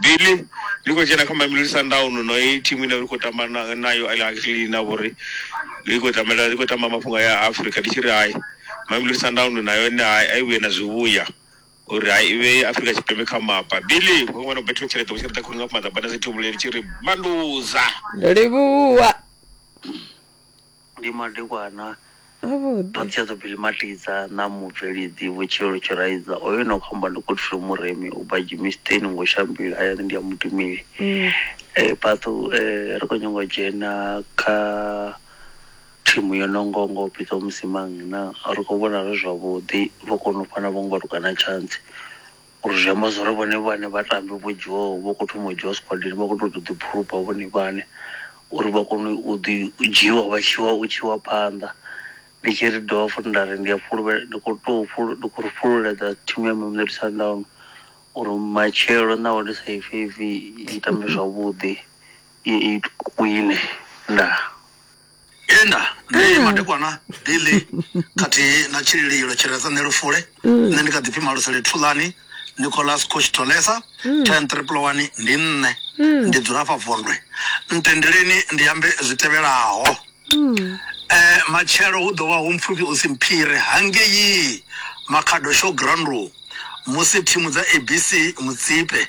Billy, Ndi khou dzhena kha Mamelodi Sundowns no i thimu ine ri khou tamba na nayo Al Ahly na vhori i khou tambela i khou tamba mafhungo aya a Afrika ndi tshi ri hai Mamelodi Sundowns na yone hai a i vhuye na zwivhuya uri hai i vhe Afrika Tshipembe kha mapa. Billy, Hu ṅwana u Betro Tshilete vho Tshilete khulu nga maḓabana dzi thubule ndi tshi ri Manduza. Livhuwa. Ndi madekwana Avhuḓi. a Tshedzo Billy Matidza na mubveledzi Vho Tshilolo Tshiraiza. Hoyo ane a khou amba ndi Godfrey Muremi u bva Germiston ngo Shambila hayani ndi ya Mutumeli. Mm. Eh Patu eh ri khou nyanga u dzhena kha thimu yo no ngo ngo Pitso Musimang na ri khou vhona zwi zwavhuḓi vho kona u fana vho ngo lukana chance. Uri zwi amba zwori vhone vhane vhatambi vho dzhiwaho vho kho thoma u dzhiwa squadini vha kho to ḓi phurupa vhone vhane uri vha kone u ḓi dzhiwa vha tshiwa u tshiwa phanḓa ndi tshi ri dovha futhi nda ri ndi a fhulufhela ndi kho to ndi khou fhululedza thimu ya Mamelodi Sundowns uri matshelo naho ndi sa ifhe ipfhi i tambe zwavhuḓi i wine ndaa. tenda nṋe madekwana billy khathihi na tshilililo tshi re sa nṋe lufule nṋe ndi kha ḓipfi malusele thulani nicolas coach tolesa ten triple one ndi nṋe ndi dzula afha vondwe ntendeleni ndi ambe zwi tevhelaho eh matshelo hu ḓo vha hu mpfufhi u si mphire hangei makhado show ground musi thimu dza abc mutsipe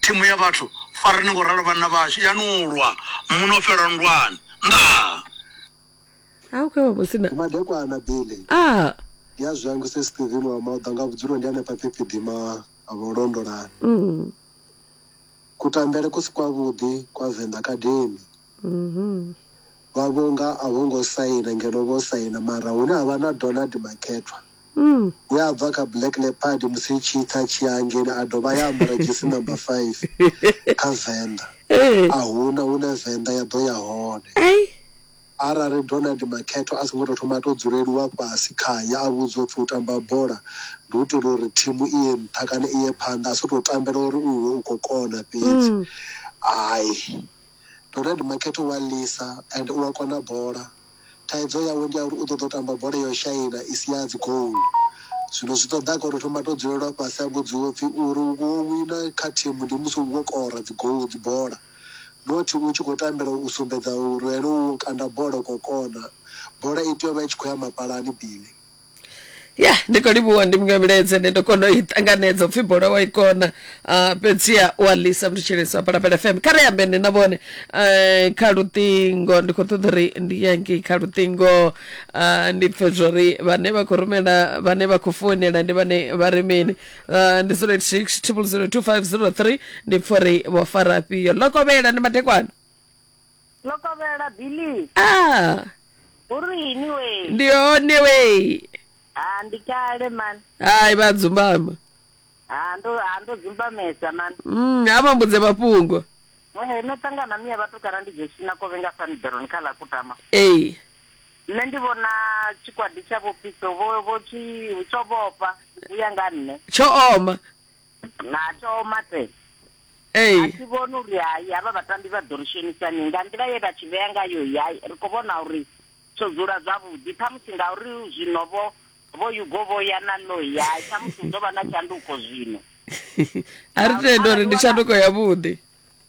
Thimu ya vhathu, farani ngo ralo vhanna vhashu, ya nu lwa, mu no fhelwa nndwani. Ndaa! a u khou vha musina Ndi madekwana Billy. a Ndi a zwangu se Steven wa Mauḓa nga vhudzulo ndi hanefha Phiphiḓima ha vho Londolani. mm. Kutambele ku si kwavhuḓi kwa Venḓa Academy. vha vho nga a vho ngo saina ngeno vho saina mara hune ha vha na Donald Makethwa we a bva kha Black Leopard musi tshi tsa tshi ya ngeni a dovha ya ambara jesi number 5 kha Venḓa a huna hune Venḓa ya ḓo ya hone arali Donald Makhetho a songo tou thoma a tou dzuleliwa fhasi khaye a vhudzwa upfhi u tamba bola ndi u itela uri thimu i ye nṱha kana i ye phanḓa a si tou tambela uri u iwe u khou kona fhedzi hai Dorad Makete u a ḽisa and u a kona bola. Thaidzo yawe ndi ya uri u ṱoḓa u tamba bola yo shaina i si ya dzigoalu. Zwino zwi ṱoḓaga uri u thoma a tou dzulelwa fhasi a vhudziwa u pfhi uri u wo wina kha thimu ndi musi u wo kora dzigoalu, dzibola not u tshi khou tambela u sumbedza uri ene u wo kanda bola u khou kona. Bola i tea u vha i tshi khou ya mapalani Billy. ya ndi khou livhuwa ndi muṅwe vhiledze nde ndo kona u i ṱanganedza upfhi bola wa i kona uh, fhedziha u a ḽisa mutsheleso wa palapala fm kha ri ambe nṋe na vhone uh, kha luṱingo ndi khou ṱoḓa uri ndi yangi kha luṱingo uh, ndi pfe zwori vhane vha khou rumela vhane vha khou founela ndi vhane vha ri mini uh, ndi 086 triple 02503 ndi pfe uri vho farafhio lokovhela ndi madekwana Ḽo kovhela Billy. Ah. Uri ini we. Ndi hone we. Ah ndi kale man. Hai vha dzumbama. Ah ndo ah ndo dzumbamesa man. Mm ha vha mbudze mafhungo. Eh no tangana miya vhathu kana ndi dzheshi na kovhe nga Sanderoni kha ḽa kutama. Eh. Nṋe ndi vhona tshikwadi tsha vho Piso vho vho tshi tsho vhofha u ya nga nṋe. Tsho oma. na thoma te Ee. a thi vhoni uri hai havha vhatambi vha ḓo ri shonisa-ni nga nḓila ye vha tshi vhea ngayo iyi hai ri khou vhona uri tsho dzula zwavhuḓi ṱhamusi ngauri zwino vho vho yugo vho ya na noi hai ṱhamusi hu ḓo vha na tshanduko zwino a ri tende uri ndi tshanduko yavhuḓi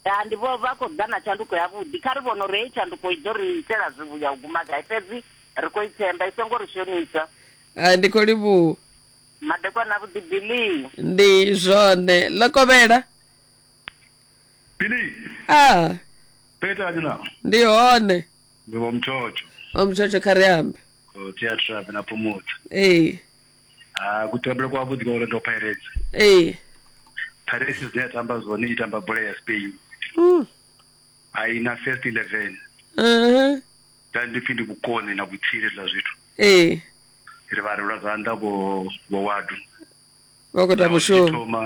ya ndi vho vha khou ḓa na tshanduko yavhuḓi kha ri vhone uri heyi tshanduko i ḓo ri itela zwivhuya u guma gai fhedzi ri khou i themba i songo ri shonisa Ah, ndi khou livhuwa madekwana avhuḓi bilii ndi zwone ḽo kovhela Billy, ah petani na. ndi hone Ndi vho mthotsho. omtshotsho kha ri ambe Ko theatra na phumutsa. ee Ah, kutambele kwa vhuḓi kwa Orlando Pirates. ee Pirates dzine ya tamba zwone i tamba bola ya Spain. Mm. A i na first 11. Mhm. Dai ndi pfi ndi vhukoni na vhutsila hezwiḽa zwithu ee ri vha ri lwa zwanḓa vho vho wadu vha khou ita Naho zwi tshi mushumo thoma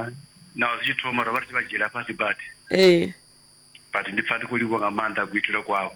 naho zwi tshi thoma ro vha ri tshi vha dzhiela fhasi badi ee but ndi pfa ndi khou livhuwa nga maanḓa kuitele kwavho